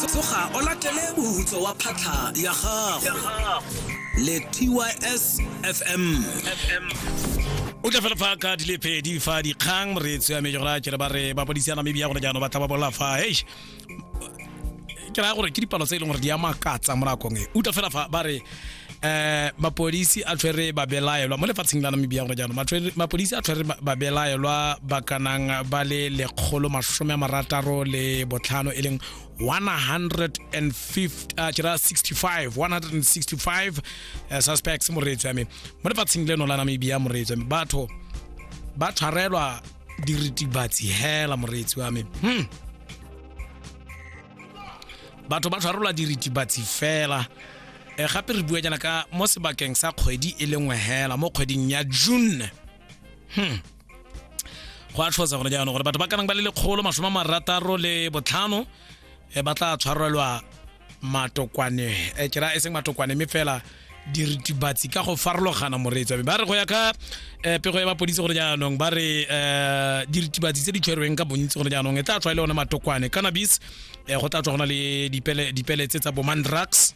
tsoga o latele mohutso wa phatlha ya gago le tys fm o tla fela fa ka di le pedi fa dikgang moreetsi ya mejora ke re ba re ba bodisa namibia gore jaanong ba tla ba bola fa eish ke raya gore ke dipalo tse e leng gore di a makatsa mo nakong e utlwa fela fa ba re eh mapodisi a tshwere babelaelwa mo lefatsheng la namibia gore jaanong mapodisi a tshwere babelaelwa ba kanang ba le lekgolo masome a marataro le botlhano e leng 165 165 eh, suspects moreetsi ame mo lefatsheng leno la namibia moreetsi ame batho ba tshwarelwa diritibatsi hela moreetsi wa me hmm. batho ba tshwarelwa diritibatsi fela e gape re bua jaana ka mo sebakeng sa kgwedi e le nngwe hela mo kgweding ya june hmm. go a tlhosa gone jaanong gore batho ba kanang ba le lekgolo masome a marataro le botlhano e ba tla tshwarelwa matokwane e kera e seng matokwane mme fela diritibatsi ka go farologana moreetso ba re go ya ka eh, pego ya bapodisi gore jaanong ba re eh, diritibatsi tse di tshwerweng ka bontsi gore jaanong e tla tswa e le one matokwane cannabis eh, go tla tswa go na le dipele dipele tse tsa boman drugs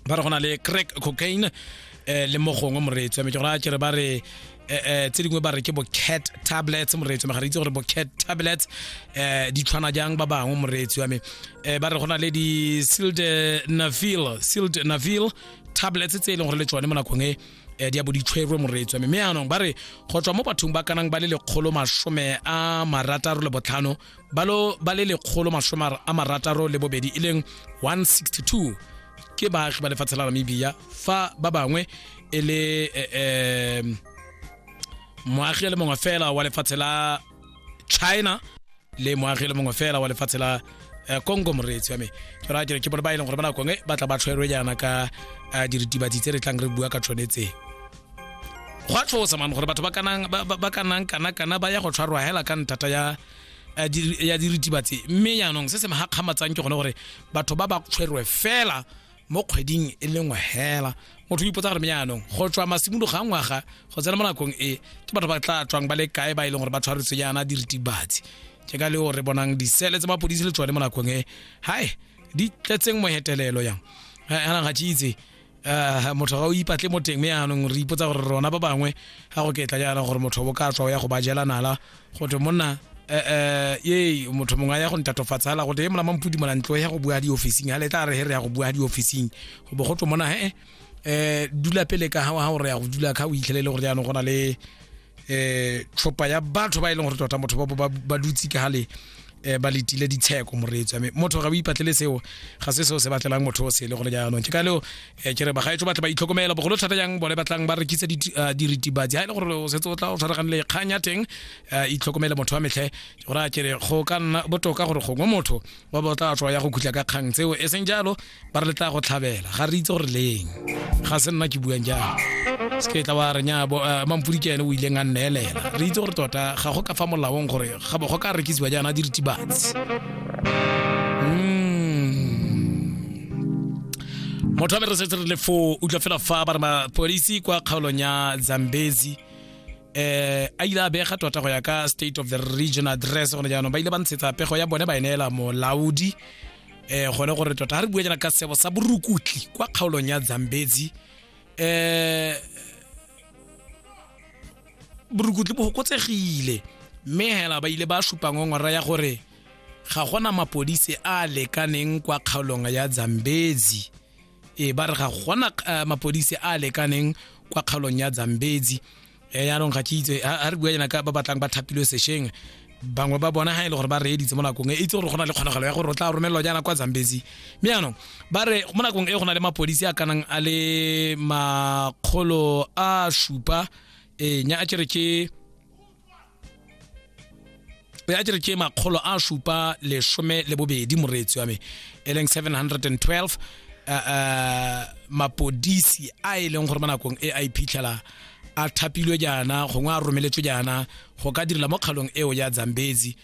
ba re go na le crack cocaine eh le mo gongwe moreetsi me ke gore a kere ba re eh, eh tse dingwe ba re ke bo cat tablets moreetsi me ga re itse gore bo cat tablets eh di tshwana jang ba bangwe moreetsi wa me eh ba re go na le di silt nafil silt nafil tablets tse e leng gore le tsone mo nakong e eh, di a bo di tshwerwe moreetsi wa me mme yaanong ba re go tswa mo bathong ba kanang ba le lekgolo masome a marataro le botlhano ba lo ba le lekgolo masome a marataro le bobedi e leng 162 ke baagi ba lefatshe la namibia fa ba bangwe e le um moagi le mongwe fela wa lefatshe la china le moagi le mongwe fela wa lefatshe la eh, congo moreetsi wa me ke ra ke bone ba e leng gore ba nakong e ba tla ba tlhwerwe jaana ka eh, diritibatsi tse re tlang re bua ka tshwanetseng go a tlhosa mane gore batho ba kanang ba kanang kana kana ba ya go tshwarwa hela ka nthata ya eh, ya diritibatse mme yaanong se se magakgamatsang ke gone gore batho ba ba tshwerwe fela mo kgweding e le nngwe hela motho o ipotsa gore me yaanong go tswa masimologo ga ngwaga go tsena mo nakong e ke batho ba tla tswang ba le kae ba e leng gore ba tshwaretse yana diritibatse ke ka leo re bonang disele tse mapodisi le tsone mo nakong e hai di tletseng mohetelelo yang anang ga tse itse Eh, motho ga o ipatle mo teng mme yaanong re ipotsa gore rona ba bangwe ga go ketla jaana gore motho bo ka tswa o ya go ba jela nala go thwe monna eh, eh, ye motho mongwe a ya go ntatofatsa fela go te e molama mpudi mola ntlo ya go bua di officing ha le tla re he re ya go bua di officing go bo go twe mona he eh dula pele ka ha wa ha o re ya go dula ka o itlhelele gore jaanong go na le eh tlhopa ya batho ba e leng gore tota motho ba ba dutse ka gale um ba letile ditsheko moreetso ame motho ga o ipatlele seo ga se seo se batlelang motho o sele gone jaanong ke ka leo um ke re bagaetso batle ba itlhokomela bogolo thata jang bone batlang ba rekisa eh, diritibatsi ga e le gore o setse o tla o tshwaragane le kgang ya teng um itlhokomele motho wa metlhe gore a kere go ka nna botoka gore gongwe motho ba ba tla tswa ya go khutla ka kgang tseo e seng jalo ba re le tla go tlhabela ga re itse gore leng ga se nna ke buang jang se ke tla wa re nya eh, mampodi ke ene o ileng a nneelela re itse gore tota ga go ka fa molaong gore ga go ka rekisiwa jaana diritibatsi hmm. motho a me re setse re le foo utlwa fela fa ba re mapodisi kwa kgaolong ya zambezi eh a ile a bega tota go ya ka state of the region address gone jaanong ba ile ba ntshetsa pego ya bone ba e neela molaodi eh gone gore tota ga re bua jana ka sebo sa borukutli kwa kgaolong ya zambezi eh borukutli bo gokotsegile mme hela ba ile ba supa ngongora ya gore ga gona mapodisi a lekaneng kwa kgaolong ya zambezi e ba re ga gona eh, mapodisi a lekaneng kwa kgaolong ya zambezi e yaanong ga ke itse a re bua jana ka ba batlang ba thapilwe sešeng bangwe ba bona ga e le gore ba reeditse mo nakong e itse gore go na le kgonagalo ya gore o tla romelelwa jaana kwa zambezi mme yaanong ba re mo nakong e go na le mapodisi a kanang a le makgolo a supa ee nya a kere ke ya jere ke makgolo a supa lesome le bobedi moreetsi wa me e leng 712 uh, uh, mapodisi a e leng gore mo nakong e a iphitlhela a thapilwe jaana gongwe a romeletswe jaana go ka direla mo kgalong eo ya zambezi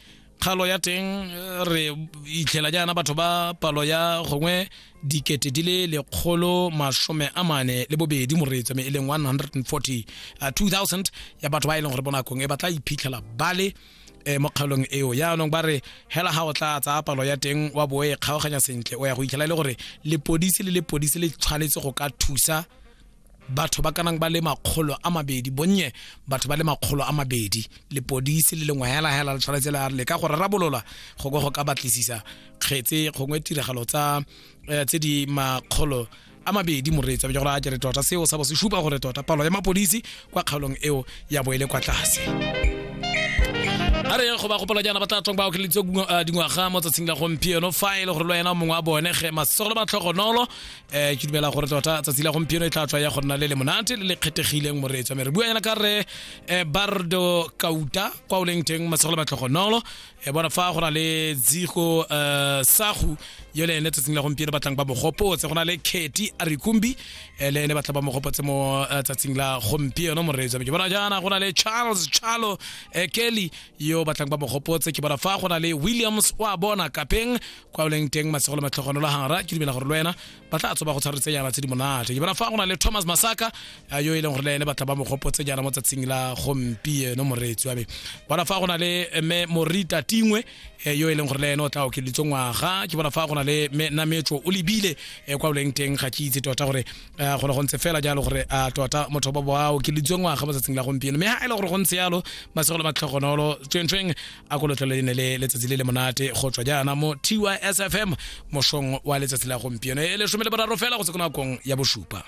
kgalo ya teng eh, re itlhela jaana batho ba palo ya gongwe dikete di le lekgolo masome a mane le bobedi moreetso me e leng 140 uh, 2000 ya batho ba e leng gore mo nakong e ba tla iphitlhela ba le eh, mo kgaolong eo jaanong ba re hela ga o tla tsaya palo ya teng wa bo e kgaoganya sentle o ya go itlhela e le gore lepodisi le lepodisi le tshwanetse go ka thusa batho ba kanang ba le makgolo a mabedi bonnye batho ba le makgolo a mabedi lepodisi le lengwe hela hela le tshwanetse la le ka go rarabolola go go ka batlisisa kgetse gongwe tiragalo tsa eh, tse di makgolo a mabedi moreetsa bja gore a kere tota seo sa bo se supa gore tota palo ya mapodisi kwa kgaolong eo ya bo e le kwa tlase a re go ba gopola jaana ba tla tswang ba okeleditse eh, dingwaga mo tsatsing la gompieno fa e le gore le wena mongwe wa bone ge masego le matlhogonolo eh ke dumela gore tota tsatsi la gompieno e tla tswa ya go nna le le monate le le kgethegileng moreetswa mme re bua yana ka re eh, bardo kauta kwa o leng teng masegolo matlhogonolo e bona fa go na le dzigo eh, sagu yo le ene tsatsing la gompieno batlang ba mogopotse go na le kety arikumbi eh, le ene batla ba mogopotse mo eh, tsatsing la gompieno moreetswa mme ke bona jaana go na le charles chalo eh, kelly yo batlang ba mogopotse ke bona fa go na le williams wa bona kapeng kwa o leng teng masego le matlhogonolo gara ke dumela gore le wena ba tla tsoba go tshwaretsejana tse di monate ke bona fa go na le thomas masaka a yo e leng gore le ene ba tla ba mogopotse jana mo tsatsing la gompieno moreetsi wa me bona fa go na le mme morita tingwe eh, yo e leng gore le ene o tla okeleditse ngwaga ke bona fa go na le mme nametso o lebile eh, kwa o leng teng ga ke itse tota gore eh, go ne go ntse fela jalo gore a tota motho ba ba okeleditswe ngwaga mo tsatsing la gompieno mme ha e le gore go ntse yalo masego le matlhogonolo tswengtsweng a ko lotlhole le ne le letsatsi le le monate go tswa jaana mo tysfm mošong wa letsatsi la gompieno e lesome le boraro fela go se ko nakong ya bosupa